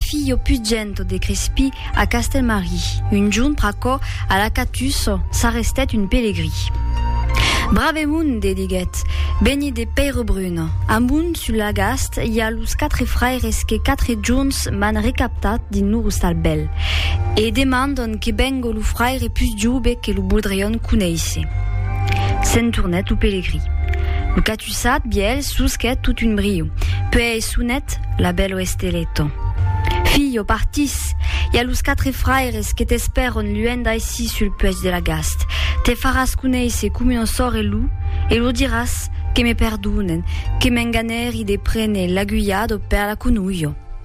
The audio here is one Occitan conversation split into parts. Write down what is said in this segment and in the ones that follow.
Filho pugent de Crespí a Castelmarí, un junt pr'aquò a la Catus s'arrestèt un pelegrí. Brave monde, diguèt, benit de Pèirebrun, amunt sul Lagast i a los quatre fraires que quatre junts m'an recaptat dins lor ostal bèl, e demandon que bengo lo fraire pus jove que lo voldrion conéisser. S'en tornèt lo pelegrí. Lo Tusat biel susquet tot un brio. Puèi sonet la bèl oesteleto. Filho, partís! I a los quatre fraires que t'espèron luènh d'aicí sul puèch de la Gast. Te faràs conéisser com un ossor e lo, e lo diràs, que me perdonen, que m'enganèri de prene l'aguilhado per la conolho.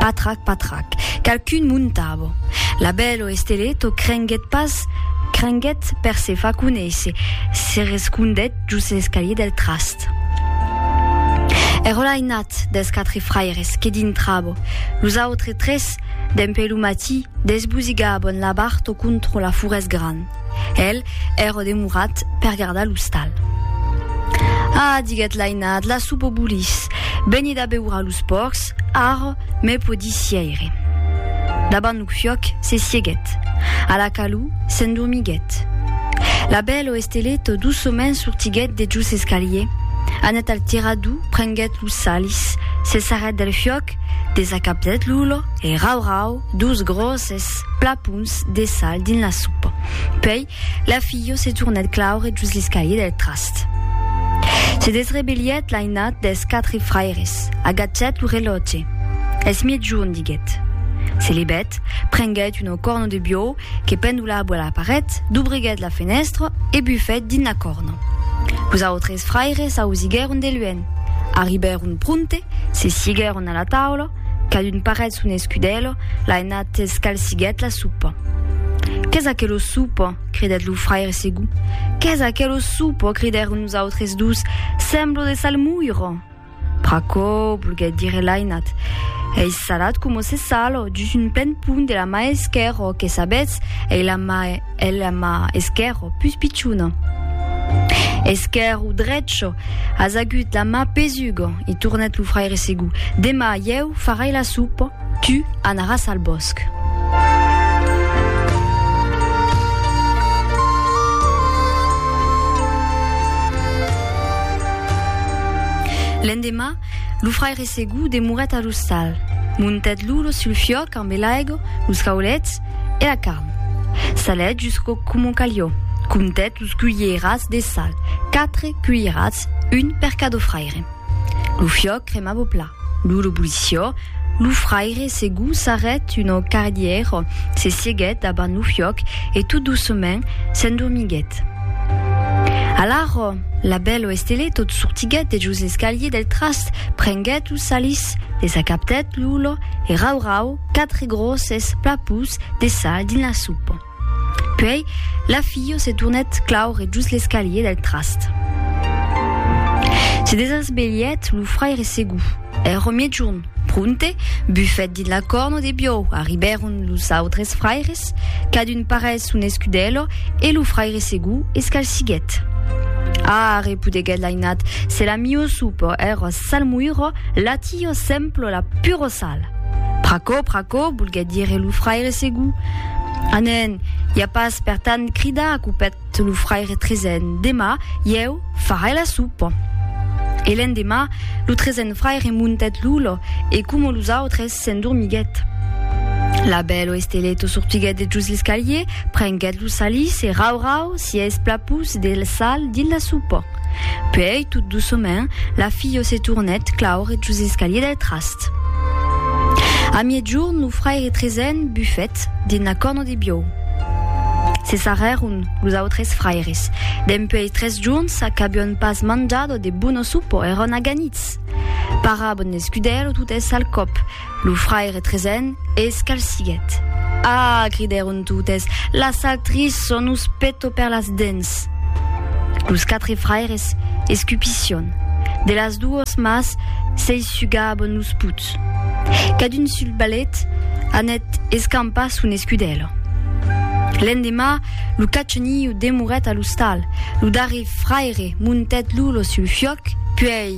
Patrac, patrac, qualqu'un montava. Labèl o Estelèt o crenguèt pas, crenguèt per se far conéisser, se rescondèt jos l'escalier del trast. Èra l'ainat dels quatre fraires que dintrava, los autres tres, dempè lo matí, desbosigavan la bart o contra la forès gran. El ère demorat per gardar l'ostal. Ah, diguèt l'ainat, la soupa bolís. Benid a beure a los pòrcs, ara me podi sièire. Davant lo fiòc se sieguèt. A la calor s'endormiguèt. La bèl o Esteleta doçament sortiguèt de jos l'escalier, anèt al tirador, prenguèt los salis, se sarrèt del fiòc, desacapzèt l'olor e rau-rau, Dos gròsses plapons de sal dins la sopa. Puèi, la filha se tornèt claure jos l'escalier del trast. Se desrebelhèt l'ainat dels quatre fraires, agachèt lo relòtge. Es miègjorn, diguèt. Se levèt, prenguèt una corna de biòu que pendolava a la paret, dobreguèt la fenèstra e bufèt dins la corna. Los autres fraires ausiguèron de luènh. Arribèron pronte, se siguèron a la taula, Cadun parèt son escudèlo, l'a enat escalsiguèt la sopa. Qu'es aquelo sopa? cridèt lo fraire Segú. Qu'es aquelo sopa? cridèron los autres dos. Semblo de salmoiro! Pr'aquò, volguèt dire l'ainat, ei salat coma se sal dus un plen pont de la mà esquèrra, que sabètz, ei la mà, ei la mà esquèrra pus pichona. Esquèrra o drecha? As agut la mà pesuga? I tornèt lo fraire Segú. Demà ieu farai la sopa, tu anaràs al bòsc. L'endemà, lo fraire Segú demorèt a l'ostal. Montèt l'olo sul fiòc ambe l'aigo, los caulets e la carn. Salèt jusqu'o coma calió. Comptèt los cuilherats de sal, quatre cuilherats, un per cadofraire. fraire. Lo fiòc cremava au plat. Lo l'obuliciò, lo fraire se gosarèt una cardièra, se sieguèt davant lo fiòc e tot doucement s'endormiguèt. Alara, la bèla Estelé tot sortiguèt de jos l'escalier del trast, prenguèt lo salís, desacaptèt l'ola e rau-rau quatre gròsses plapús de sal dins la sopa. Puèi, la filha se tornèt claure just l'escalier del trast. Se desasvelhèt lo fraire segur. Èra miègjorn. Pronte, bufèt dins la corna de biòu. Arribèron los autres fraires, cadun parèt son escudèlo e lo fraire segur escalsiguèt. Ah! repudeguèt l'ainat, se la miosupò èra salmoira, la tia sempla la purosala! Pr'aquò, pr'aquò, volguèt dire lo fraire Segú. A nen, i a pas per tant, crida acupèt lo fraire Trezen, demà, ieu, farai la sopa. E l'endemà, lo trezen fraire montèt lo lò e, coma los autres, s'endormiguèt. La bèlo Estelèto sortiguèt dejús l'escalier, prenguèt lo salís e, rau, rau, sies plapús de sal dins la sopa. Puèi, tot doçament, la filha se tornèt claure jos l'escalier del trast. A miègjorn, lo fraire Trezen bufèt dins la corna de biòu. Se sarrèron los autres fraires. Dempuèi tres jorns qu'avián pas manjat de bono sopa, èran aganits. Parabon l'escudèr lo tutèssa al còp. Lo fraire Trezen es calsiguet. Ah! cridèron totes, las actrices son us peto per las dents! Los quatre fraires escupission. De las duos mas s'ei sugabon los puts. Cadun sul ballet anèt escampar son escudèlo. L'endemà, lo cachoniu demorèt a l'ostal. Lo darrer fraire montèt Lulo sul fiòc, puèi.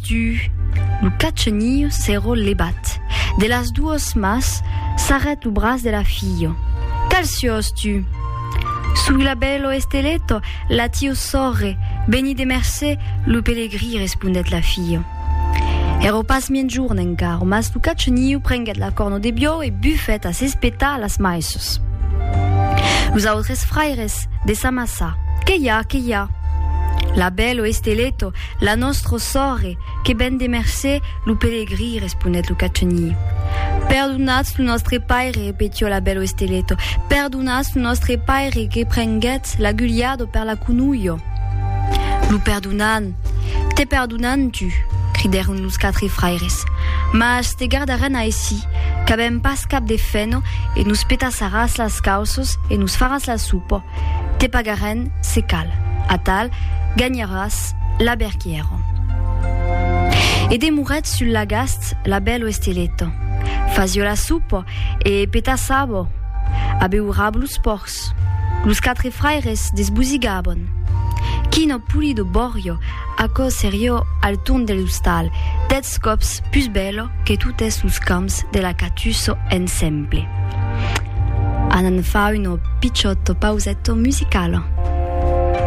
Du, lo catcheniu s'èro levat de las duas mas, sarrèt lo braç de la filha. Qual siós tu? Soi la bèlo Esteleto, la tiu sòrre, beni de mercé, lo pelegrí, respondèt la filha. Èro pas miègjorn encara, mas lo catcheniu prenguèt la corno de biòu e bufèt a s'espetar a las maisses. Los autres fraires de s'amassar. Qué i a? Qué i a? La bèlo Esteleto, La nòstro sòrre, que ben de mercé, lo pelegrí, responèt lo cachenhí. Perdonatz lo nòstre paire, repetió la bèl Oesteleto, perdonatz lo nòstre paire que prenguèt l'agulhado per la conulho. Lo perdonan, te perdonan tu, cridèron los quatre fraires, mas te gardarèn aicí, qu'avèm pas cap de feno e nos petassaràs las cauços e nos faràs la sopa. Te pagarèn, se cal. Atal, ganharàs la berquièro. E demorèt sul lagast la bèlo esteleto. Fasio la sopa e petassabo. Abeurabo los pòrcs. Los quatre fraires desbosigabon. Quino pulido bòrio, aquò serió al torn de l'ostal, dètz còps pus bèlo que totes los camps de la Catusso ensemble. Anan far una pichòta pauseto musicala.